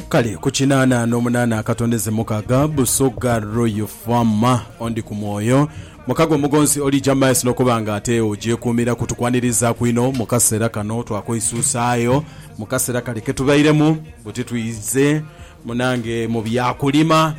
Kale ku kinaana n'omunaana akatondeze mukaaga, Busoga Royal Farm ondi ku mwoyo. Mukago omugonzi oli James n'okuba nga ate ogyekuumira kutukwaniriizaaku inho mu kaseera kano. Twakweisuusaayo mu kaseera kale ke tubairemu buti twidhe munange mu bya kulima,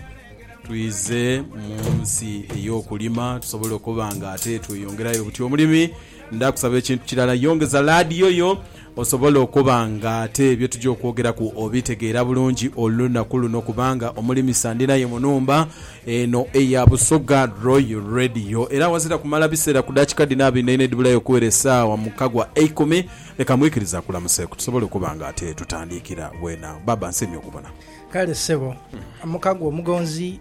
twidhe mu nsi ey'okulima tusobole okuba nga ate tweyongerayo buti omulimi. Ndaakusaba ekintu kirala. Yongeza laadiyo yo osobole okuba nga ate bye tugya okwogeraku obitegeera bulungi olunaku luno kubanga omulimisa ndi naye mu nhumba eno eya Busoga Royal Radio. Era awazira kumala biseera ku daakika dhino abeinhainha edhibulayo okuwera esaawa mu kagwa eikumi, leka mwikirize akulamuseku tusobole okuba nga ate tutandiikira bwena. Baaba, nsiimye okubona. Kale ssebo, Mukagwa omugonzi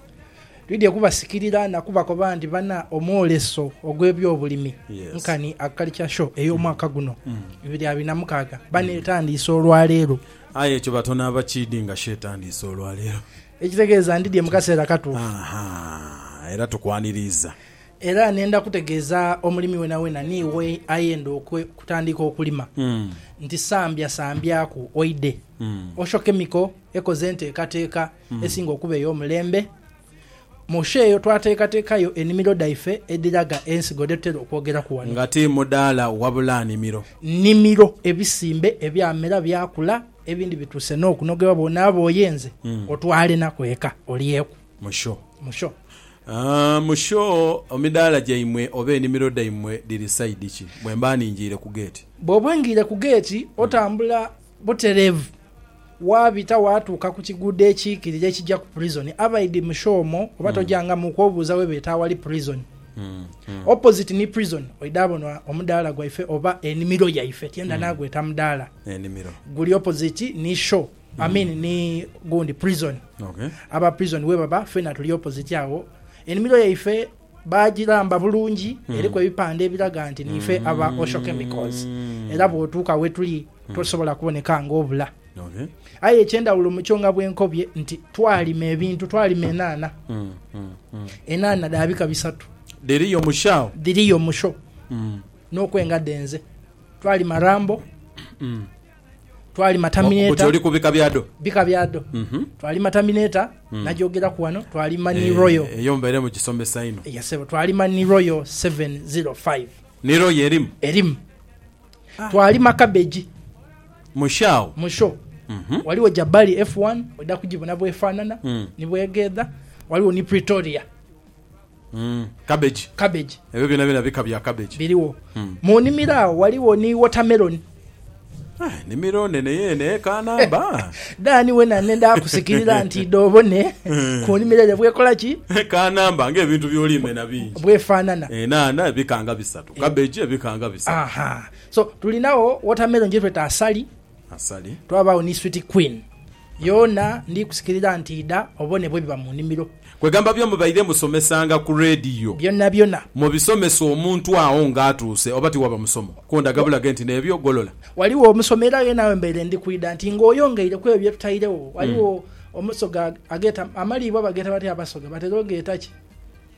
Twidhie kubasikirira na kubakoba nti bana omwoleso ogw'ebyobulimi nkani Agriculture Show ey'omwaka guno bibiri abiri na mukaaga bana etandiise olwaleero. Aye ekyo batonaaba kiidhi nga show etandiise olwaleero. Ekitegeeza ndidhie mu kaseera katuufu. Aha, era tukwaniriiza. Era nenda kutegeeza omulimi wenawena ni we ayenda okutandiika okulima nti sambya sambyaku oidhe Osho Chemical ekoze enteekateeka esinga okuba ey'omulembe. Mu sho eyo twateekateekayo enimiro dhaife edhiraga ensigo dhe tutera okwogeraku ghano. Nga ti mudaala wabula nimiro. Nimiro, ebisimbe ebyamera byakula, ebindi bituuse n'okunogebwa bw'onaaba oyenze otwalenaku eka olyeku. Mu sho. Mu sho. Mu sho emidaala gyaimwe oba enimiro dhaimwe dhiri sayidi ki bwemba ningiire ku geeti? Bw'oba ongiire ku geeti otambula. Butereevu, waabita waatuuka ku kiguudo ekiikirira ekija ku purizoni. Abaidi mu show omwo oba tojangamu okwobuuza we beeta awali purizoni. Opposite ni purizoni oidha bona omudaala gwaife oba enimiro yaife, tyenda naagweta mudaala, guli opposite ni show, I mean ni gundi, purizoni. Aba purizoni we baba, ffena tuli opposite agho. Enimiro yaife. Baagiramba bulungi, eriku ebipande ebiraga nti niife aba Osho Chemicals era bw'otuuka we tuli tosobola kuboneka ng'obula. Aye eky'endhawulo mu kyo nga bwe nkobye nti twalima ebintu, twalima enhanha. Enhanha dha bika bisatu. Dhiriyo mu sho agho? Dhiriyo mu sho n'okwenga dhenze. Twalima Rambo. Bw'oti oli ku bika bya dho. Bika bya dho. Twali Matamineta, nagyogeraku ghano, twali Mani Royal. Eeh, eyo mbaire mu gisomesa inho. Yes sebo, twali Mani Royal seven zero five. Ni Royal erimu? Erimu. Twali Makabegi. Mu show agho? Mu show. Ghaligho Jabali F1, oidha kugibona bw'efaanana ni bw'egheedha. Ghaligho ni Pretoria. Cabbage. Cabbage. Ebyo byonabyona bika bya cabbage. Biriwo. Mu nimiro agho ghaligho ni watermelon. Enimiro nene yeene eye Kanamba. Dan wena nenda kusikirira nti idho obone ku nimiro ere bwekola ki? E Kanamba nga ebintu byoli mena bingi. Bwefanana. Enhanha ebika nga bisatu. Cabbage ebika nga bisatu. Aha. So tulinagho watermelon gyetweta asali. Twabaagho ni sweet queen yoona ndi kusikirira nti idha obone bwebiba mu nimiro. Kwegamba bye mubaire musomesanga ku radio byonabyona mubisomesa omuntu agho nga atuuse oba tiwaba musomo kundaga bulage nti nebyo golola. Ghaligho omusomo era ye naawe mbaire ndi kwidha nti nga oyongeire kwebyo bye tutairegho. Ghaligho omusoga ageeta amaliibwa bageeta batya abasoga batera ogeeta ki?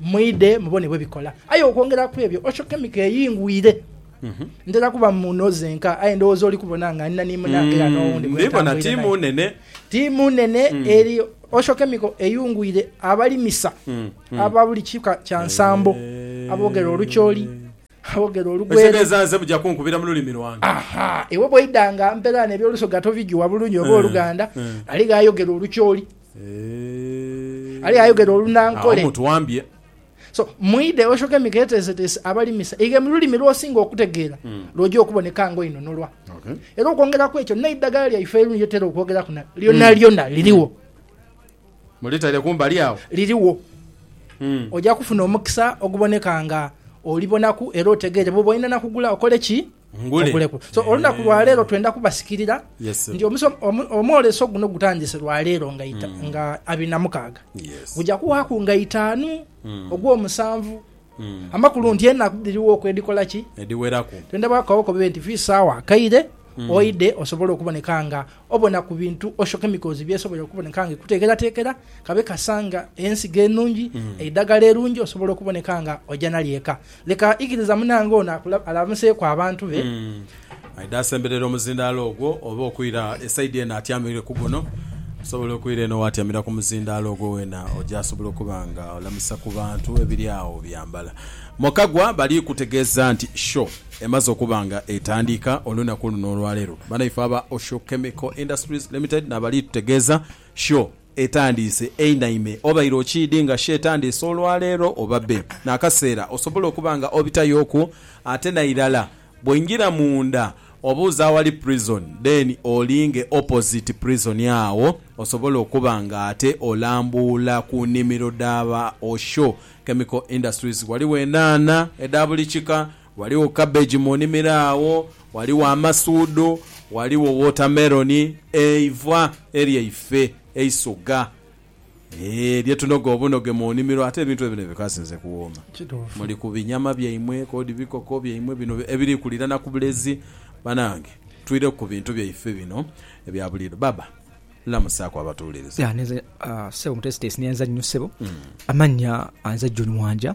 Mwidhe mubone bwe bikola. Aye okwongera ku ebyo, Osho kemiko eyingwire. Ntera kuba muno zenka, aye ndowooza oli kubona nga ndina ni munange era n'owundi gwe ntambwire naye. Tiimu nene eri Osho kemiko eyungwire abalimisa aba buli kika kya nsambo aboogera Olucholi. Boogera olugwere. Ekitegeeza nze muja kunkubira mu lulimi lwange. Aha, iwe bwoidha nga mperaano eby'Olusoga tobijuwa bulungi oba Oluganda, aligho ayogera Olucholi, aligho ayogera Olunankole. Agho mutuwambye. So, mwidhe oshoke miketeeseteese abalimisa ighe mu lulimi lw'osinga okutegeera lw'oja okuboneka nga oinunulwa. Era okwongera ku ekyo, n'eidagala lyaife lye tera okwogeraku na, lyonalyona lirigho. Mulitaire kumbali agho. Lirigho. Oja kufuna omukisa oguboneka nga olibonaku era otegeere bwoba olina na kugula okole ki? Ngule. Oguleku. So, olunaku lwa leero twenda kubasikirira Yes, sir. nti omuso, omu, omwoleso guno gutandise lwa leero nga ita, nga abiri na mukaaga. Yes. Guja kuwaaku nga itaanu ogw'omusanvu Amakulu nti enaku dhirigho okwedhikola ki? Edhiweraku. Twendha bwakagho kobe nti fi sawa akaire oidhe osobole okuboneka nga obona ku bintu osho chemicals byesobola okuboneka nga ekutekeratekera kabe kasa nga ensigo enungi, eidhagala erungi osobola okuboneka nga oja nalyo eka. Leka ikiriza munange ono alamuseku abantu be. Aidha asemberera omuzindaalo ogwo, oba okwira esaidi eno atyamire ku guno, osobola okwira eno waatyamira ku muzindaalo ogwo weena oja asobola okuba nga olamisa ku bantu ebiri agho byambala. Mu Kagwa bali kutegeeza nti show emaze okuba nga etandika olunaku luno olwaleero. Banaife aba Osho Chemical Industries Limited naabali tutegeeza show etandiise einaime. Obaire okiidhi nga show etandiise olwaleero oba bbe n'akaseera osobola okuba nga obitayooku ate nairala Bwoingira munda obuuze awali prison then olinge opposite prison agho osobole okuba nga ate olambuula ku nimiro dha ba Osho Chemical Industries. Ghaligho enhanha edha buli kika, ghaligho cabbage mu nimiro agho, ghaligho amasuudhu, ghaligho watermelon. Eivwa eryaife eisoga. Eeh bye tunoga obunoge mu nimiro ate ebintu ebino bikasinze kuwooma. Muli ku binyama byaimwe kodi bikoko byaimwe bino ebiri kulirana ku bulezi banange twireku ku bintu byaife bino ebya buliido. Baba lamusaaku abatuwuliriza. Ya nze ssebo mutesiteesi neyanza nnyo ssebo amannya nze John Mwanja.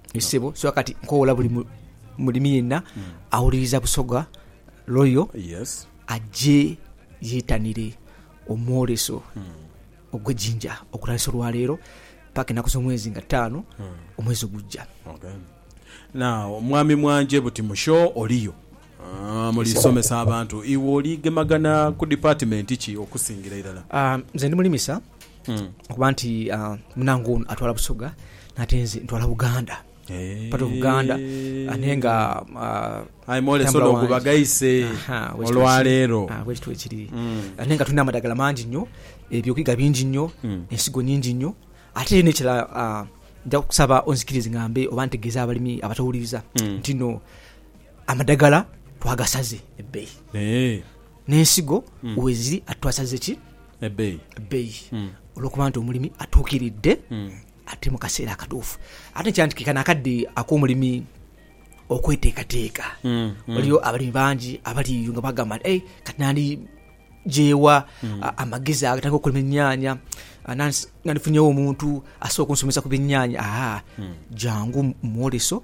Ssebo, so kati nkowoola buli mulimi yenna awuliriza Busoga Royal aje yetanire omwoleso ogwe Jinja okutandisa olwaleero paka enaku zomwezi nga taano omwezi ogujja. Now mwami Mwanje buti mu show oliyo? Mulisomesa abantu. Iwe oli gemagana ku dipatimenti ki okusingira irala? Nze ndi mulimisa okuba nti munange ono atwala Busoga nate nze ntwala Buganda. Part of Buganda ate nga Aye mwolese ono gwe bagaise olwaleero. Bwekityo bwekiri. Ate nga tulina amadagala mangi inho, eby'okwiga bingi inho, ensigo nyingi inho. Ate n'ekirala nja kusaba onzikirize ngambe oba ntegeeze abalimi abatawuliriza ntino, Amadagala twagasaze ebbeyi n'ensigo weziri ate twasaze ki ebbeyi olwokuba nti omulimi atuukiridde ate mu kaseera akatuufu ate nkira nti ke kano akadde ak'omulimi okweteekateeka waliyo abalimi bangi abali eyo nga bagamba nti ei kati nandi gyewa amagezi agatandika okulima ennyaanya nandifunyewo omuntu asobola okunsomesa ku byennyanya aa jangu mu mwoleso.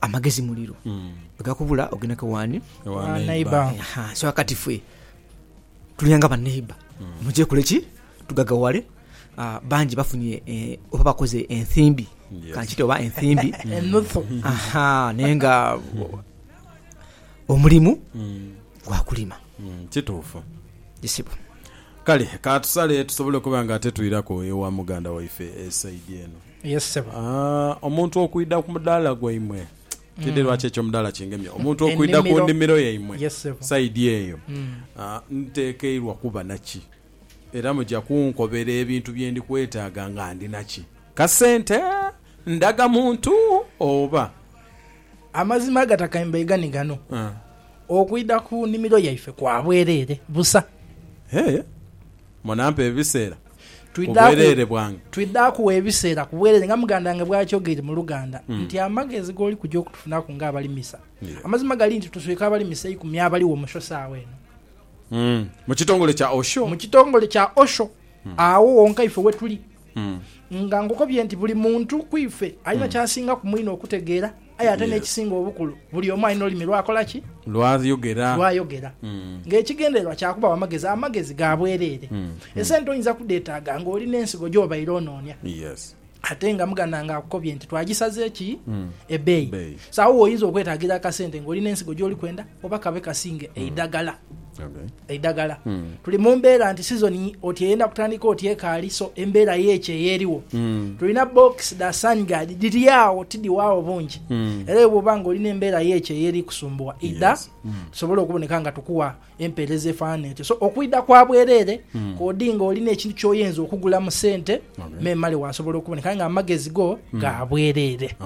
Amagezi muliro. Bwegakubula ogenda ke wani? Ewa neighbor. Aha, so akati fwe tulyanga ba neighbor. Muje kole ki? Tugagawale. Ah, bangi bafunye eh, oba bakoze enthimbi. Yes. Kankite oba enthimbi. Enuthu. Aha, naye nga omulimu gwa kulima. Mm, Kituufu. Isibo. Kale katusale tusobole okuba nga ate twiraku ewa muganda waife esaidi eno. Yes ssebo. Aah, omuntu okwidha ku mudaala gwaimwe, tidhi lwaki ekyo mudaala kingemye, omuntu okwidha ku Ennimiro. nnimiro yaimwe Yes ssebo. sayidi eyo, aah, ntekeirwa kuba na ki? Era muja kunkobera ebintu bye ndi kwetaaga nga ndina ki? Kasente, ndhaga muntu oba? Amazima agatakaimbaigha ni gano, Aah. okwidha ku nnimiro yaife kwa bwereere busa. Hee. Munampa ebiseera ku bwereere bwange. Twidha kugha ebiseera ku bwereere nga muganda wange bw'akyogeire mu Luganda nti amagezi g'oli kuja okutufunaku ng'abalimisa. Amazima gali nti tuswika abalimisa eikumi abaligho mu Osho saagha eno. Mu kitongole kya Osho? Mu kitongole kya Osho. Agho wonka ife we tuli. Nga nkukobye nti buli muntu ku ife alina ky'asingaku mwine okutegeera. Aye ate n'ekisinga obukulu, buli omu alina olulimi lw'akola ki? Lw'ayogera. Lw'ayogera. Nga ekigendererwa kya kubawa magezi, amagezi ga bwereere. Esente oyinza kudheetaaga nga oli n'ensigo gy'obaire onoonia. Yes. Ate nga muganda nga akukobye nti twagisaze ki? Ebbeeyi. So agho w'oyinza okwetaagira akasente nga oli n'ensigo gy'oli kwenda. oba kabe kasinge hmm. eidagala eidagala tuli mu mbeera nti sizoni oti eyenda kutandika oti ekaali so embeera yeekyo eyeriwo hmm. tulina box da sangard dhiri awo tidiwaawo bungi hmm. era bwoba nga olina embeera yeekyo eyeri kusumbuwa ida tusobole okuboneka nga tukuwa empeereza efaanana etyo so okwida kwa bwereere kodi nga olina ekintu kyoyinza okugula mu sente memale wasobola okuboneka nga amagezi go ga bwereere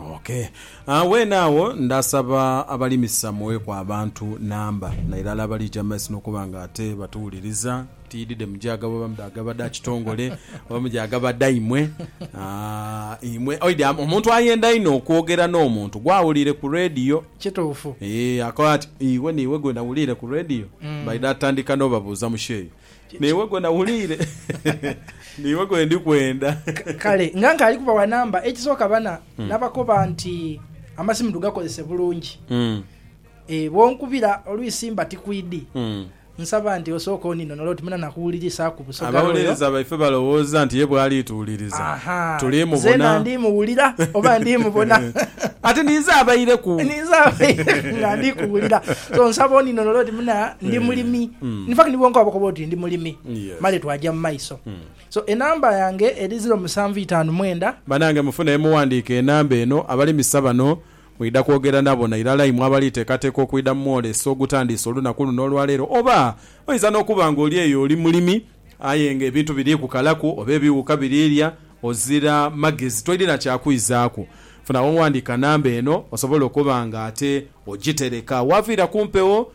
Agho bwenagho ndasaba abalimisa muweeku abantu namba, na irala abaliija mu maiso n'okuba nga ate batuwuliriza. Tiidide mu gya gabwe oba mu dha gaba dha kitongole, oba mu gya gaba dhaimwe. Aah, imwe oidhi a, omuntu ayenda inho okwogera n'omuntu gw'awuliire ku radio. Kituufu. Eeh, akoba ati, Iwe n'iwe gwe nawuliire ku radio? Baidha tandika n'obabuuza mu kyeyo. N'iwe gwe nawuliire, n'iwe gwe ndi kwenda. Kale nga nkaali kubawa namba, ekisooka bana, nabakoba nti amasimu tugakozese bulungi. Ee, bw'onkubira olwisi mba tikwidi. Nsaba nti osooke oninonole oti muna nakuwulirisaaku Busoga Royal? Abawolereza baife balowooza nti ye bw'ali tuwuliriza, Ahaa. tuli mubona. Nzeena ndi muwulira oba ndi mubona? Ate ninze abaireku. Ninze abaireku nga ndi kuwulira. So nsaba oninonole oti muna ndi mulimi. In fact ni bwonka wabakoba oti ndi mulimi male twaja mu maiso. So enamba yange eri ziro musanvu itaanu mwenda. Banange mufune yemuwandiika enamba eno. Abalimisa bano mwidha kwogera nabo na irala imwe abali teekateeka okwidha mu mwoleso ogutandiise olunaku luno olwaleero. Oba oinza n'okuba nga oli eyo oli mulimi aye nga ebintu biri kukalaku oba ebiwuka birirya ozira magezi toirina kya kwizaaku. Funa wowandiika namba eno osobole okuba nga ate ogitereka awaviira ku mpewo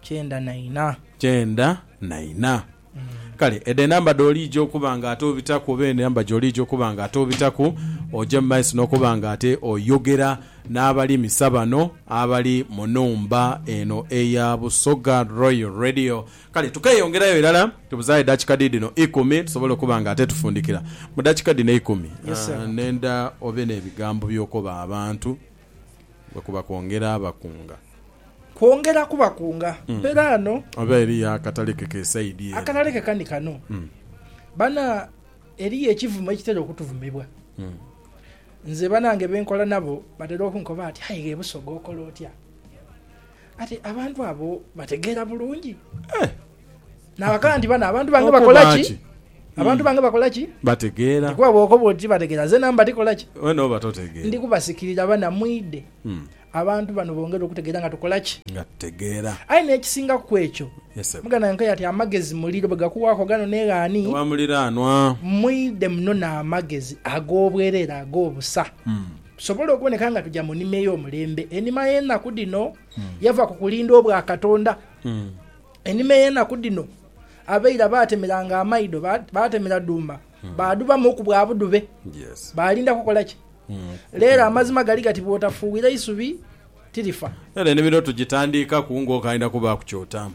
Kyenda na ina. Kyenda na ina. Kale edho enamba dh'oliija okuba nga ate obitaku oba enamba gy'oliija okuba nga ate obitaku, oje mu maiso n'okuba nga ate oyogera n'abalimisa bano abali mu nhumba eno eya Busoga Royal Radio. Kale tukeeyongerayo irala, tubuzaayo edakika dhiidhino ikumi tusobole okuba nga ate tufundikira. Mu dakika dhino eikumi, Yes, sir. ndenda obe n'ebigambo by'okoba abantu. bwe kuba kwongera bakunga. Kwongera kubakunga. Mpera ano. Oba eriyo akatale ke ke saidi ere. Akatale ke kani kano. Bana, eriyo ekivumo ekitera okutuvumibwa. Nze banange be nkola nabo batera okunkoba bati, Aye ghe Busoga okola otya? Kati abantu abo bategeera bulungi? Naghagala nti, Bano abantu bange bakola ki? Abantu bange bakola ki? Bategeera. Kuba bw'okoba oti bategeera, nze namba ndi kola ki? Weena oba totegeera. Ndi kubasikirira bana mwidhe. Abantu bano bongere okutegeera nga tukola ki? Nga tutegeera. Aye n'ekisingaku ku ekyo, muganda wange Nkya ati, Amagezi muliro, bwe gakuwaaku ghano n'e ghani, mwidhe munone amagezi ag'obwereere ag'obusa, tusobole okuboneka nga tuja mu nima ey'omulembe. Enima y'enaku dhino yava ku kulinda obwa Katonda. Enhuma ey'enaku dhino abaira baatemeranga amaidho, baatemera dhuuma, hmm. baadhubamu ku bwa budhube. Baalinda kukola ki? Hmm. Leero amazima gali gati bw'otafuuwira isubi tirifa. Era enimiro tugitandiikaku ng'okaidha kubaaku ky'otamu.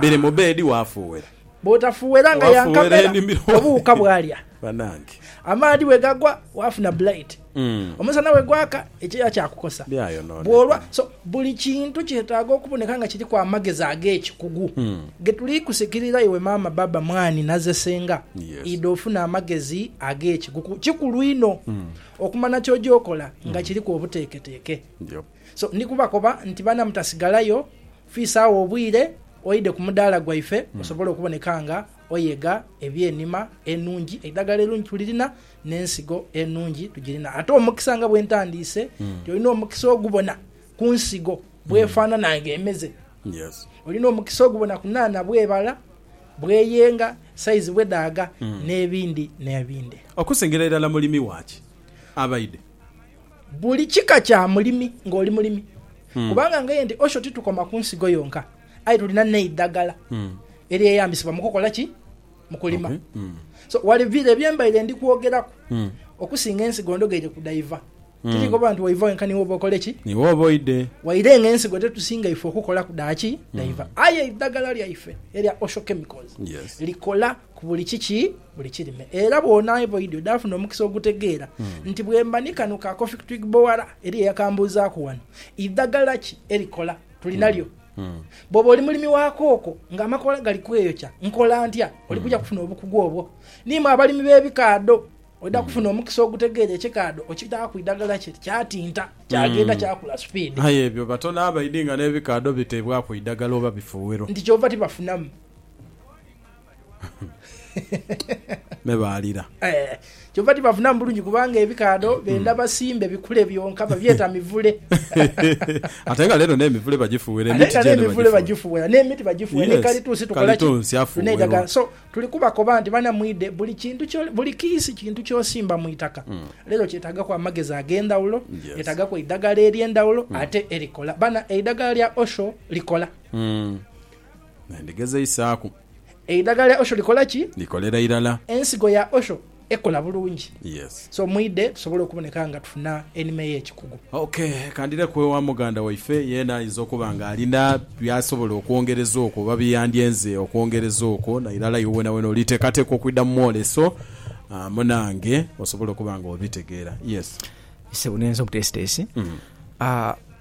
Biri mu beedi waafuuwera. Bw'otafuuwera nga ya nkamera obuwuka bwalya. Banange. Amaadhi bwe gagwa, waafuna blight. Omusana bwe gwaka, ekyeya kyakukosa. Byayonooneka. Bw'olwa. So, buli kintu kyetaaga okuboneka nga kiriku amagezi ag'ekikugu. Ge tuli kusikirira iwe maama, baaba, mwani naze senga, Yes. idha ofuna amagezi ag'ekikugu. Kikulu inho okumanha ky'oja okola nga kiriku obuteeketeeke. Yep. So, ndi kubakoba nti baana mutasigalayo, fiisaawo obwire oidhe ku mudaala gwaife osobole okuboneka nga oyega eby'enima enungi, eidhagala erungi tulirina, n'ensigo enungi tugirina. Ate omukisa nga bwe ntandiise nti hmm. olina omukisa ogubona ku nsigo bwefaanana hmm. nga emeze. Olina omukisa ogubona ku naana bwebala, bweyenga, saizi bwedaaga, hmm. n'ebindi n'ebindi. Okusingira irala mulimi waaki abaide? Buli kika kya mulimi ng'oli mulimi. Kubanga ng'aye nti osho titukoma ku nsigo yonka. Aye tulina n'eidagala eryeyambisibwa mu kukola ki? Mu kulima. So, wali bire bye mbaire ndi kwogeraku okusinga ensigo ndogeire ku dhaiva. Tiri koba nti waiva wenka ni wooba okole ki? Ni wooba oidhe. Waire nga ensigo tetusinga ife okukolaku dha ki? Dhaiva. Aye eidagala lyaife erya Osho Chemicals Yes. likola ku buli kiki? Buli kirime. Era bw'onaaba oidhi odhaafuna omukisa ogutegeera nti bwemba ni kano ka Coffec Twig Boara, eriyo eyakambuuzaaku wano, idagala ki erikola? tuli nalyo. Bw'oba oli mulimi wa kooko ng'amakoola gali kweyokya, nkola ntya? Oli kuja kufuna obukugu obwo. Ni mwe abalimi b'ebikaadho, oidha kufuna omukisa ogutegeera ekikaadho okitaaku idagala kye kyatinta kyagenda kyakula supiidi. Aye ebyo batono abaidhi nga n'ebikaadho biteebwaku idagala oba bifuuwiro. Nti kyova tibafunamu. Me baalira. Eh, kyova tibafunamu bulungi kubanga ebikaadho benda hmm. basimbe bikule byonka babyeta mivule. Ate nga lero n'emivule bagifuwera emiti gyene bagifuwera. Emivule bagifuwera n'emiti bagifuwera ne kalituusi tukola ki? Kalituusi afuwerwa. So tuli kubakoba nti bana mwide buli kintu kyo buli kiisi kintu kyosimba mu itaka. Hmm. Lero kyetagaku amagezi ag'endhawulo, yetagaku eidagala ery'endhawulo hmm. ate erikola. Bana eidagala lya Osho likola. Me ndigezeisaaku. Eidhaga lya Osho likola ki? Likolera irala. Ensigo ya Osho ekola bulungi. Yes. So mwidhe tusobole okuboneka nga tufuna enima ey'ekikugu. Ok, ka ndireku ewa muganda waife, yeena ayinza okuba nga alina by'asobola okwongereza okwo oba bye yandyenze okwongereza okwo. Na irala iwe weenaweena oliteekateeka okwidha mu mwoleso amu nange, osobole okuba nga obitegeera. Yes. Ssebo, neenze omuteesiteesi.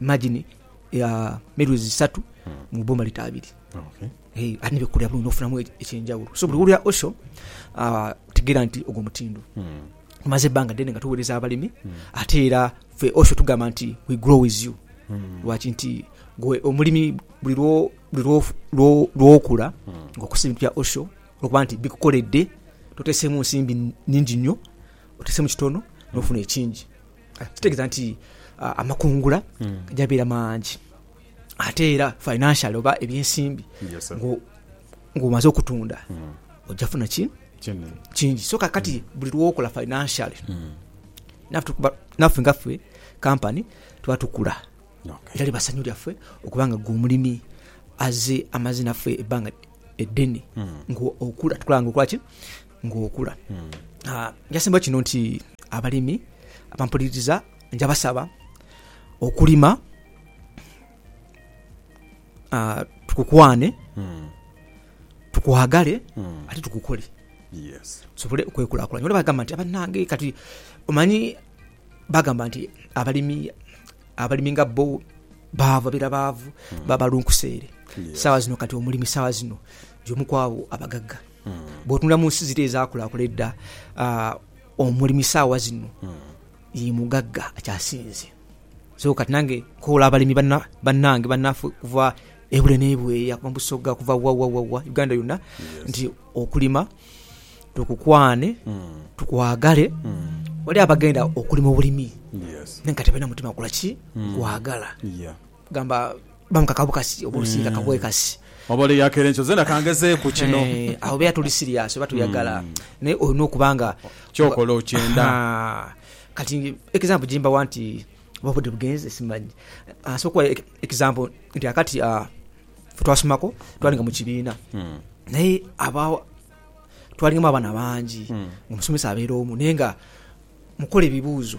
imagine ya milwezi isatu mu boma lita abiri okay. hey, ate nebekolera bulungi nofunamu e-, ekyenjawulo so buli wulira osho uh, ah, tegera nti ogwo mutindo hmm. tumaze ebbanga ddene nga tuweereza abalimi hmm. ate era fe osho tugamba nti we grow with you hmm. lwaki nti gwe omulimi buli lwokula ngaokosa ebintu bya osho olwokuba nti bikukoledde totesemu nsimbi nyingi nnyo otesemu kitono nofuna ekingi Kitegeeza nti amakungula gaja beera mangi ate era financially oba ebyensimbi ng'omaze okutunda ojja funa ki kingi so kakati hmm. buli lwokola financially hmm. naffe nga ffe kampani tuba tukula era liba ssanyu lyaffe okuba nga gwe omulimi aze amaze naffe ebbanga eddene hmm. ngaokula tukulanga okulaki ng'okula. Njasimba kino nti abalimi abampuliriza nja basaba okulima tukukwane, tukwagale ate tukukole tusobole okwekulakulanya. Olwokuba bagamba nti banange kati omanyi bagamba nti abalimi abalimi nga bo baavu babeera baavu baba balunkuseere. Sawa zino kati omulimi sawa zino y'omu kwabo abagagga. Bw'otunula mu nsi ziri ezaakulaakula edda, omulimi saawa zino ye mugagga akyasinze. So kati nange nkoola abalimi bannange, bannaffe okuva e Bule n'e Bweya, okuva mu Busoga, okuva wa wa wa wa, Uganda yonna nti okulima tukukwane, tukwagale. Waliwo abagenda okulima obulimi aye nga tebalina mutima gwa ki? Kwagala. Gamba bamuka kabukasi oba olusiika kabwe kasi. Oba ole yakera enkyo zena kangezeeku kino. Awo beera tuli siriyaasi oba tuyagala naye olina okuba nga. Kyokola okyenda. Kati example gye mbawa nti oba obudde bugenze simanyi. Nsobola okuwa example nti kaakati ffe twasomako twalinga mu kibiina naye abagho twalingamu abaana bangi ng'omusomesa abeera omu naye nga mukola ebibuuzo.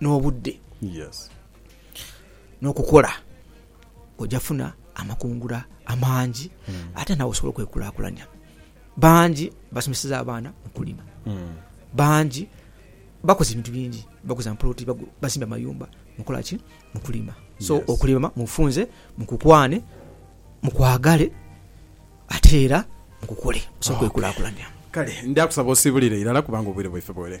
n'obudde n'okukola oja funa amakungula amangi hmm. ate nawe osobola okwekulakulanya bangi basomeseza abaana okulima hmm. bangi bakoze ebintu bingi baguza mpoloti basimba amayumba mukolaki mukulima so okulima mufunze mukukwane mukwagale ate era mukukole osobola okwekulakulanya kale ndakusaba osibulire irala kubanga obwire bwaife bwere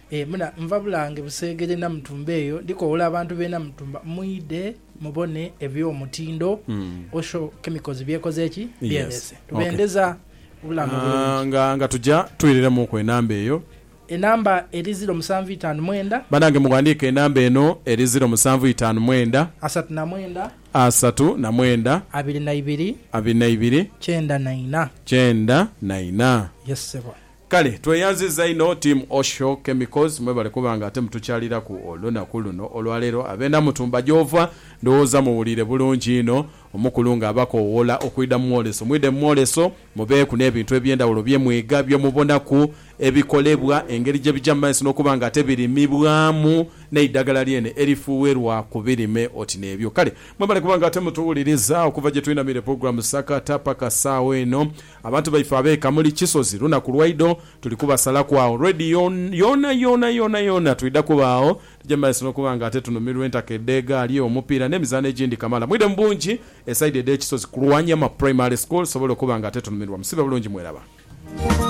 E muna, nva Bulange Buseegere Namutumba eyo ndi kowoola abantu b'e Namutumba mwidhe mubone eby'omutindo Osho Chemicals by'ekoze ki? Byeleese. Tubendeza obulamu obulungi. Nga, nga tuja, twiriremuuku enamba eyo. Enamba eri ziro musanvu itaanu mwenda. Banange mughandiike enamba eno eri ziro musanvu itaanu mwenda. Asatu na mwenda. Asatu na mwenda. Abiri na ibiri. Abiri na ibiri. Kyenda na ina. Kyenda na ina. Yes, ssebo. Kale tweyanziza inho team Osho chemicals mwebale kuba nga ate mutukyaliraku olunaku luno olwalero abena mutumba gyova ndowooza muwulire bulungi inho omukulu nga abakowoola okwida mumwoleso mwide mumwoleso mubeeku nebintu ebyendawulo byemwiga byemubonaku ebikolebwa engeri gyebija mumaiso nokuba nga ate birimibwamu neidagala lyene erifuwerwa kubirime oti nebyo kale mwebale kuba nga ate mutuwuliriza okuva gyetwinamire program sakata paka saawa eno. Abantu baife abe Kamuli Kisozi lunaku lwaidho tuli kubasalaku agho radio yoona yoona yoona yoona twidha kuba agho tugye mumaiso nokuba nga ate tunhumirwa entaka edhegaali, omupiira nemizaano egindi kamala. Mwidhe mubungi esaidi edhe Kisozi kulwa Nyama primary school tusobole okuba nga ate tunhumirwa. Musibe bulungi mweraba.